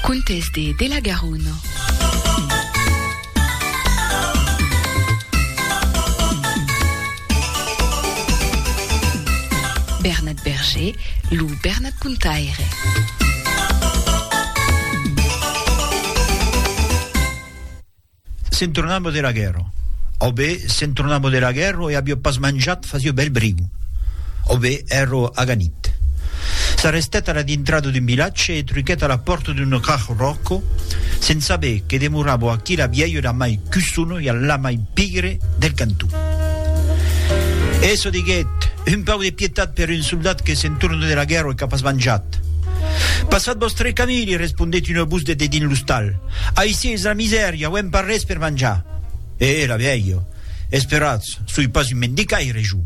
Contes de de la Garona. Bernat Berger, lo Bernat Contaire. Se'n tornava de la guèrra. Au be, se'n tornava de la guèrra e aviá pas manjat fasiá bèl briu. Au be, èra aganit. S'arrestèt a la dintrada d'un vilatge e truquèt a la pòrta d'un rach ròco, se'n saber que demorava aquí la vièlha la mai cussona e la mai pigre del canton. E çò diguèt, Un pauc de pietat per un soldat que se'n torna de la guèrra e qu'a pas manjat! Passat vòstre camí, li respondèt una votz de dedins l'ostal. Aicí es la misèria, auem pas res per manjar. E era vielha, Esperatz, soi pas un mendicaire, jo.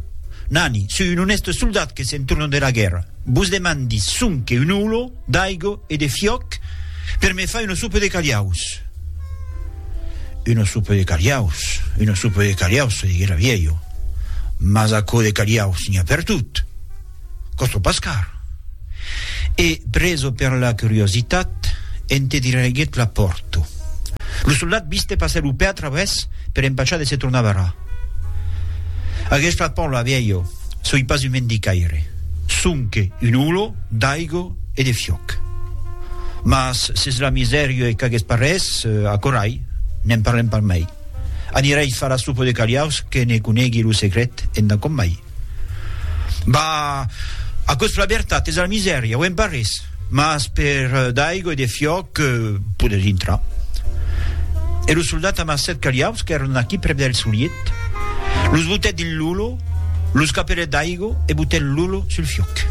Nani, soi un onèste soldat que se'n torna dera guèrra. Vos demandi sonque un holo d'aigo e de fiòc per me far una sopa de calhaus. Una sopa de calhaus, una sopa de calhaus, se diguec la vielha, mas aquò de calhaus n'i a pertot. Costo pas car. E, preso per la curiositat, ente diraiguèt la pòrto. Lo soldat viste passer lo pè a travès per empachar de se tornar barrar. Aguest flacon lo aviá jo, soi pas un mendicaire, sonque un olor d'aigo e de fiòc. Mas s'es la misèria e qu'aguest parrés, acorai, ne'n parlem pas mai. Anirai far la sopa de caliaus que ne conegui lo secret enda com mai. Bah, aquò's la vertat, es la misèria, auem pas res, mas per d'aigua e de fiòc poder dintrar. E lo soldat amassèt caliaus qu'èran aquí prèp del soliet, los botèt dins l'olor, los capelèt d'aigua e botèt l'olor sul fiòc.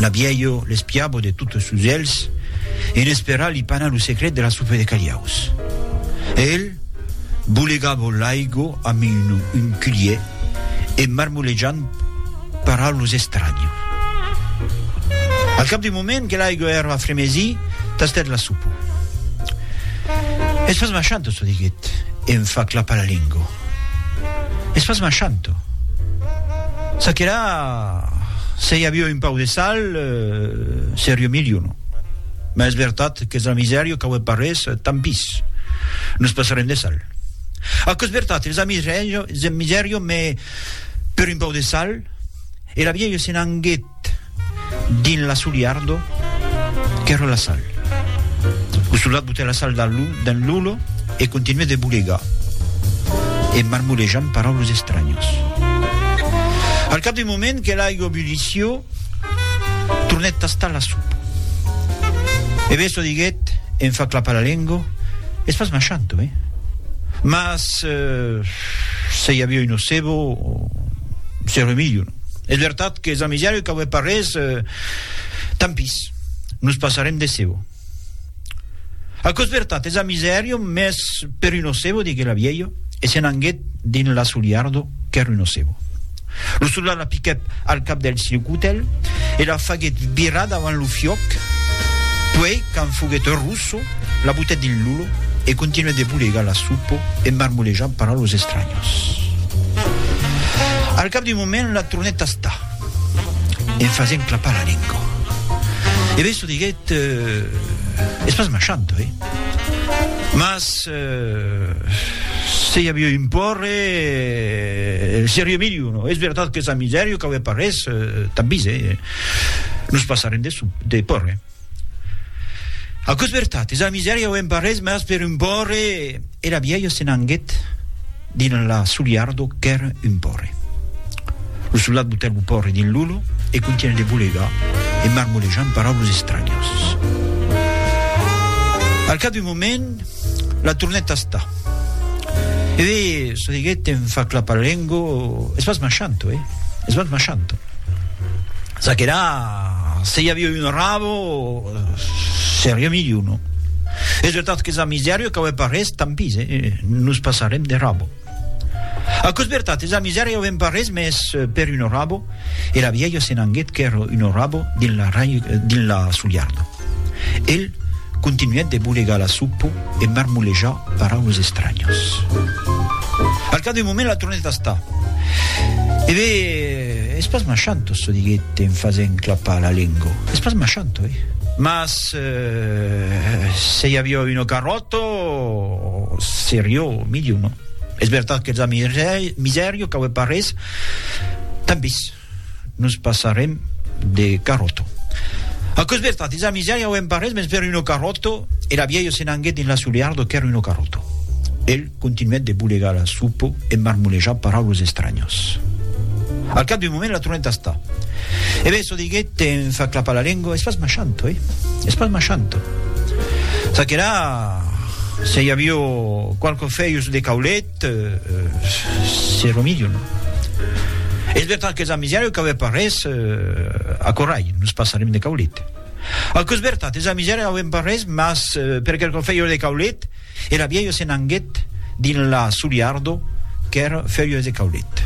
La vièlha l'espiava de totes sos elhs e n'esperava li panar lo secret de la sopa de caliaus. E el, Bolegavo l'aigo amb un culier e marmolejant para los estranhos. Al cap d'un moment que l'aigo èra fremesie, tastèt la sopa. Es pas machanto, çò diguèt e em fa clapar la lengo. Es pas machanto. Ça que la, se i avió un pauc de sal, serió milhor. Mas es vertat qu'es una misèria qu'aué parés, tampís. Nos passarem de sal. Aquò es vertat, es una misèria, mes per un pau de sal. E la vielha se n'anguèt dins l'asoliardo qu'èra la sal. Lo soldat botèt la sal dins l'olho e continuèt de bolegar, en marmolejant paraules estranyas. Al cap d'un moment que l'aiga bullissió, Tornèt tastar la sopa. E Besso diguèt, en far clapar la lengo, Es pas machanto, eh? Mas, se i aviá un nocebo, serreu milhor. Es vertat qu'es amisari qu'aué pas res, tant pis, nos passarem de cebo. Aquò's vertat, es a misèrio, mès per un ocebo, diguèt la vielha, e se n'anguèt dins l'asoliardo qu'èr un ocebo. Lo soldat la piquèt al cap del silcutel e la faguèt virar davant lo fiòc, puèi, quand foguèt rosso, la butèt dins l'ulo e continuèt de bolegar la supo e marmolejant paraulas estranyas. Al cap d'un moment, la tornèt tastar. en fasent clapar la lengua. E Besso diguèt, eh, es pas machanto, eh? Mas, eh, se i avió un pòrre, eh, serió miliu, no? Es vertat qu'es a misèrio, qu'aué pas res, eh, tanbis, eh? Nos passarem de, de pòrre. Aquò's vertat, es a misèria auem pas res, mas per un pòrre! Era vielha se n'anguet dins la soliardo qu'èr un pòrre. Lo soldat botèt lo pòrre dins l'òlo e contunhèt de bolegar e marmolejar en paraules estranyas. Al cap d'un moment, la tornèt tastar. E ve, çò diguèt en fa clapar la lengo, es pas machanto, eh! Es pas machanto! Ça que là, se i aviá un rabo, seriá milhor, non? Es vertat que sa misèria cau e pas res, tant pis, e nos passarem de rabo. Aquò's vertat, sa misèria auem pas res, mès per un rabo, e la vièlha se n'anguèt quer un rabo dins la, dins la sulharda. El continuèt de bolegar la sopa e marmolejar paraules estranhas. Al cap d'un moment la tornèt a estar. E be, es pas machant, Osso, diguèt en fasent clapar la lenga. Es pas machant, oi? Mas se i aviá una carròta, seriá milhor, non? Es vertat qu'els a miseria, cauè pas res. Tant pis. Nos passarem de carròto. Aquò's vertat, dins la misèria auem pas res mens per un ocarròto, e la vielha se n'anguèt dins l'assuleardo qu'èr un ocarròto. El continuèt de bolegar la supo e marmolejar paraules estranyas. Al cap d'un moment la tornèt tastar. E ben, çò diguèt en far clapar la lengua, es pas machanto, eh? Es pas machanto. Ça que la, se i avió qualques fèius de caulet, Te se remedion. Es vertat qu'es amisèra qu'auè pas res a Corralh, nos passarem de caulet. Aquò es vertat, es amisèra auem pas res, mas per quelcon fèieu de caulet, era vielha se n'anguet dins la soliardo qu'èr fèieu de caulet.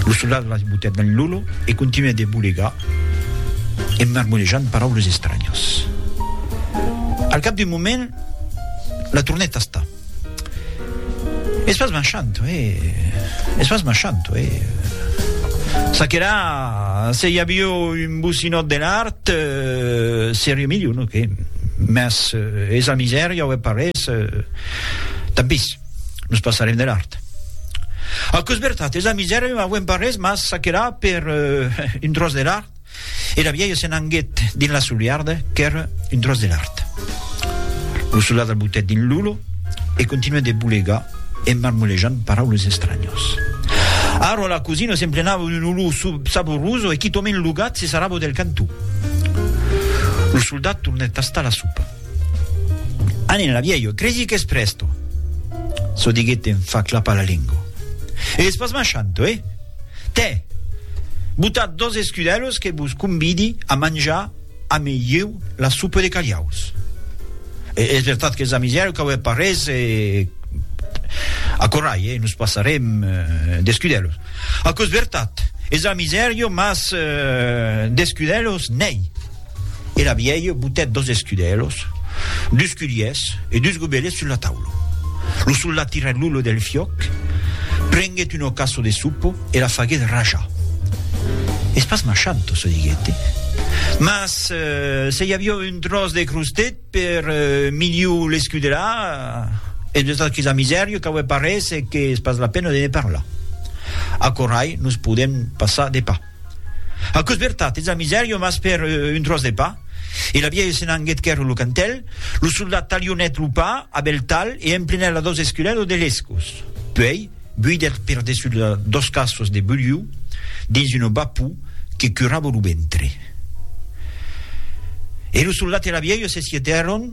Lo soldat la botèt dins lolo e continuèt de bolegar en marmolejant paraules estranhas. Al cap d'un moment, la tornèt tastar. Es pas marchant, uèi. Es pas marchant, uèi. Ça que là, se i avió un bocinòt de l'art, seriá milhor, non que? Mas es la misèria o es pas res, tant pis, nos passarem de l'art. Aquò es vertat, es la misèria, non avèm pas res, mas ça que là, per un tròç de l'art. Era vielha se n'anguet dins la soliarda qu'ère un tròç de lard. Lo soldat la botèt dins lo lo e continuèt de bolegar en marmolejant paraules estranyas. Ara la cosina s'emplenava d'un olor saboroso e quitòment lo gat se sarrava del cantó. Lo soldat tornèt tastar la sopa. Anen la vielho, cresi qu'es presto! Çò diguèt en fa clapar la lengo. E es pas machanto, eh? Tè! Botat dos escudèlos que vos convidi a manjar ame ieu la sopa de calhaus. E es vertat qu'es amisièro qu'auè pas res e acorrai, eh? Nos passarem d'escudèlos. Aquò es vertat, es amisièro, mas d'escudèlos n'ei. Era vielha botèt dos escudelos, dus culhiers e dus gobelets sus la taula. Lo soldat tirèt l'ollo del fiòc, prenguèt un ocaso de sopa e la faguèt rajar. Es pas machanto, se diguèt, mas se i aviá un tròç de crostèt per miliu l'escudelà, e de tot aquisa misèria qu'aué parés e qu'es pas la pena de ne parlar. Aquò rai nos podèm passar de pas. Aquò's vertat, ets a Miserio, mas per un tròç de pa. E la vièlha se n'anguèt quèrre lo cantèl, lo soldat talhonèt lo pa a bèl talh e emplenèt la dos esculelas de lescos. Puèi, buidèt per dessús la dos cassos de bulhiu dins una bapou que curava lo ventre. E lo soldat e la vièlha se sietèron.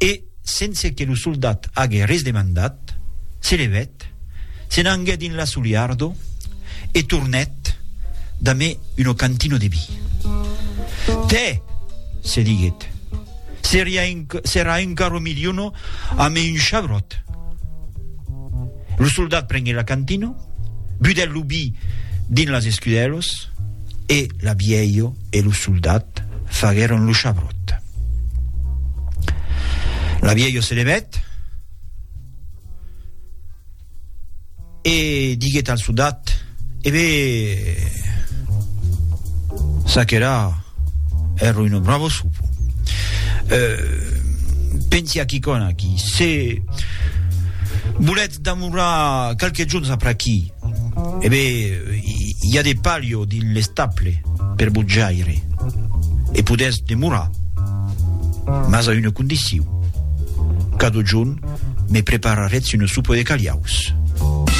E, sense que lo soldat age res demandat, se levèt, se n'anguèt dins la Suliardo e tornèt damé uno cantino de vi. Tè! se diguèt, seria enc serà encara miliono amé un chabròt. Lo soldat prenguèt la cantino, budèt lo vi dins las escudèlos e la vièlho e lo soldat faguèron lo chabròt. La vieille se levèt e diguèt al sodat, E be, s'aquera èr un bravo sopo. Pensi a quicòna aquí, se volètz damorrar qualques jorns apr'aquí, E be, i a de palio dins l'estable per vos jaire, e podètz demorar, mas a una condicion, cadojun me preparatz una sopa de caliaus.